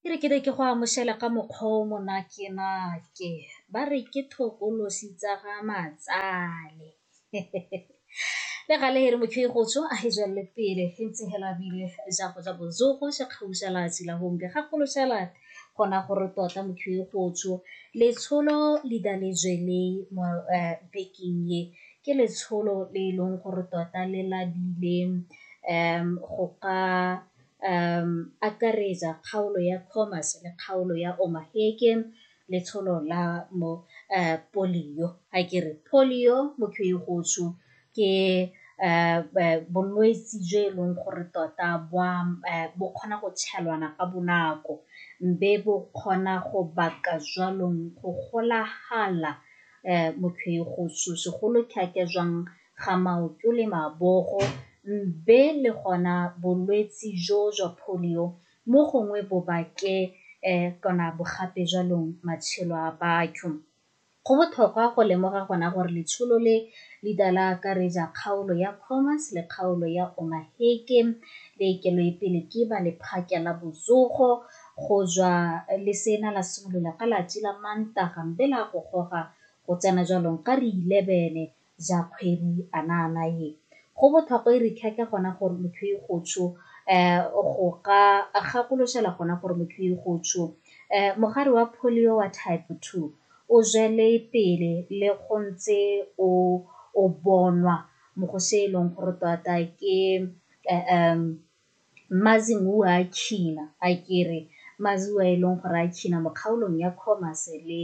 Ke re ke ne ke go amoshela ka mokgwa o monate nake ba re ke thokolosi tsa ga matsale le gale e re motho e gotsho a e jwalele pele e ntse hela bile ja go ja bozogo ja kgausa la tshila gombe ga golo shala gona gore tota motho e gotsho letsholo le da le jwele mo bekeng e ke letsholo le e leng gore tota le labile go ka akaretsa kgaolo ya commerce le kgaolo ya omaheke letsholo la mo polio ga ke re polio motho e gotsho ke bolwetse jo e leng gore tota bo kgona go tshelwana ka bonako mme bo kgona go baka jwanong go golagala motho go segolo thata jwang ga maoto le mabogo be le gona bolwetsi jo jwa polio mo gongwe bo bake kana bogape jwa lone matshelo a batho. Go botlhokwa go lemoga gona gore letsholo le le ka la akaretsa kgaolo ya Khomas le kgaolo ya Omaheke le e kelwe pele ke ba lephata la botsogo Go jwa lesela la simolola ka lati la Mantaga mbe la go goga go tsena jwalong ka ri 11 ja kgwedi anaana ye. Go bothokwa e ri keke gona gore motho e go tsho um go ka gakoloshela gona gore motho e go tsho um mogare wa polio wa type 2 o jwele pele le go ntse o o bonwa mo go se e leng gore tota ke um Mazibuwa a China, a ke re Mazibuwa e leng gore a China mo kgaolong ya Khomas le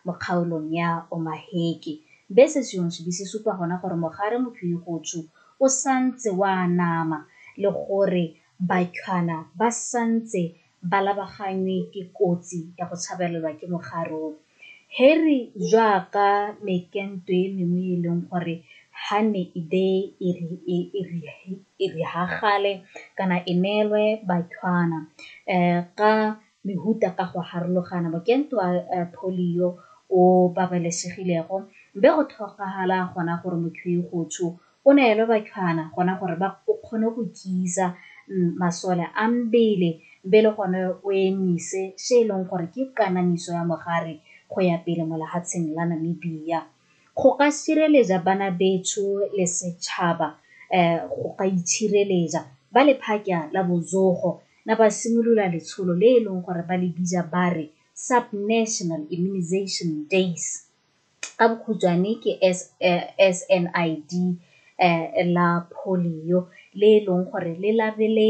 mo kgaolong ya Omaheke, be se seong sebe se supa gona gore mogare Mphwigotshu o santse o anama le gore Bathwana ba santse ba labaganngwe ke kotsi ya go tshabelelwa ke mogare o. Harry jaaka mekento e mengwe e e leng gore ha ne e be e riagale kana e neelwe bathwana ka mehuta ka go harologana mokento wa polio o babalesegilego be go tlhokagala gona gore motho e go tsho O neelwe batshwana gona gore ba o kgone go tiisa masole a mbele mbe le gone o emise se e leng gore ke kanamiso ya mogare go ya pele mo lehatsheng la Namibia. Go ka sireletsa bana betsho le setšhaba um go ka itshireletsa, ba lephakya la bozogo na ba simolola letsholo le e leng gore ba le bitsa ba re Sub-National Immunisation Days. ka bokhutshwane ke SNID la polio le e leng gore le labele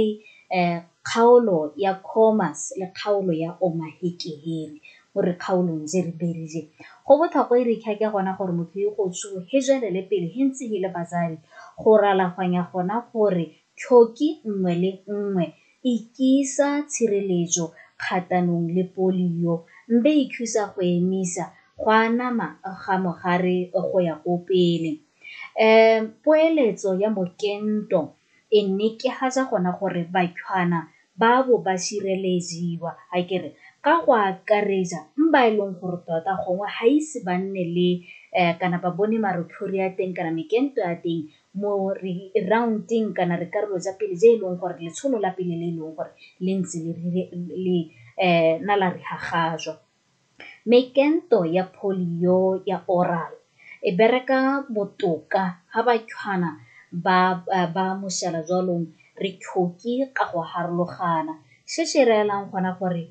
kgaolo ya Khomas le kgaolo ya Omaheke-Heri mo dikgaolong tse re pedi tse. Go botlhokwa e re kha ke gona gore motho yo go tsho he jwelele pele he ntse he le batsadi go ralaganya gona gore tlhoki nngwe le nngwe Ikisa tshireletso kgatanong le polio mbe ikhusa go emisa go anama ga mogare go ya ko pele. Um poeletso ya mokento e nekehatsa gona gore bathwana ba bo ba sireleziwa akere ka go akaretsa mba e leng gore tota gongwe ga ise ba nne le um kana ba bone marothori a teng kana mekento ya teng mo re round-eng kana re karolo tsa pele tse e leng gore letsholo la pele le e leng gore le ntse le na la re hagajwa. Mekento ya polio ya oral e bereka botoka ha batshwana ba ba mošala jwalong re tlhoke ka go harologana se se reelang gona gore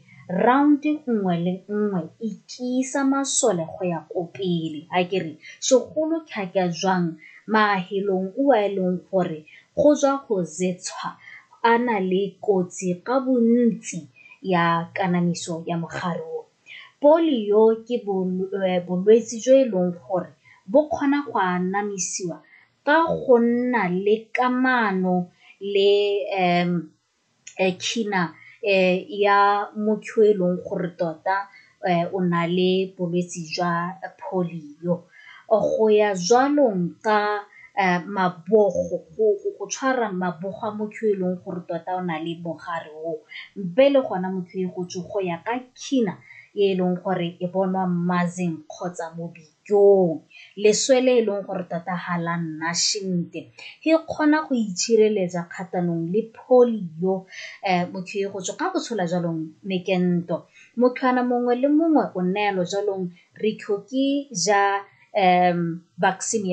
round nngwe le nngwe e tiisa masole go ya ko pele a ke re segolo tlhaka jwang maahelong o a e leng gore go tswa go zetshwa a na le kotsi ka bontsi ya kanamiso ya mogare o polio ke bolwetse jo e leng gore bo kgona go anamisiwa ka go nna le kamano le um China ya motho yo e leng gore tota o na le bolwetse jwa polio. Go ya jwalong ka mabogo, go tshwara mabogo a motho yo e leng gore tota o na le mogare o, mpe le gona motho e go ya ka China e leng gore e bonwa Mazeng kgotsa Mobitla. Joo, leswe le e leng gore tota ga la nna šente. Ke kgona go itšhireletsa kgatanong le polio. Um motho e go tswa ka go tshola jalong mekento. Mothwana mongwe le mongwe o neelo jalong re tlhoke ja um vaccine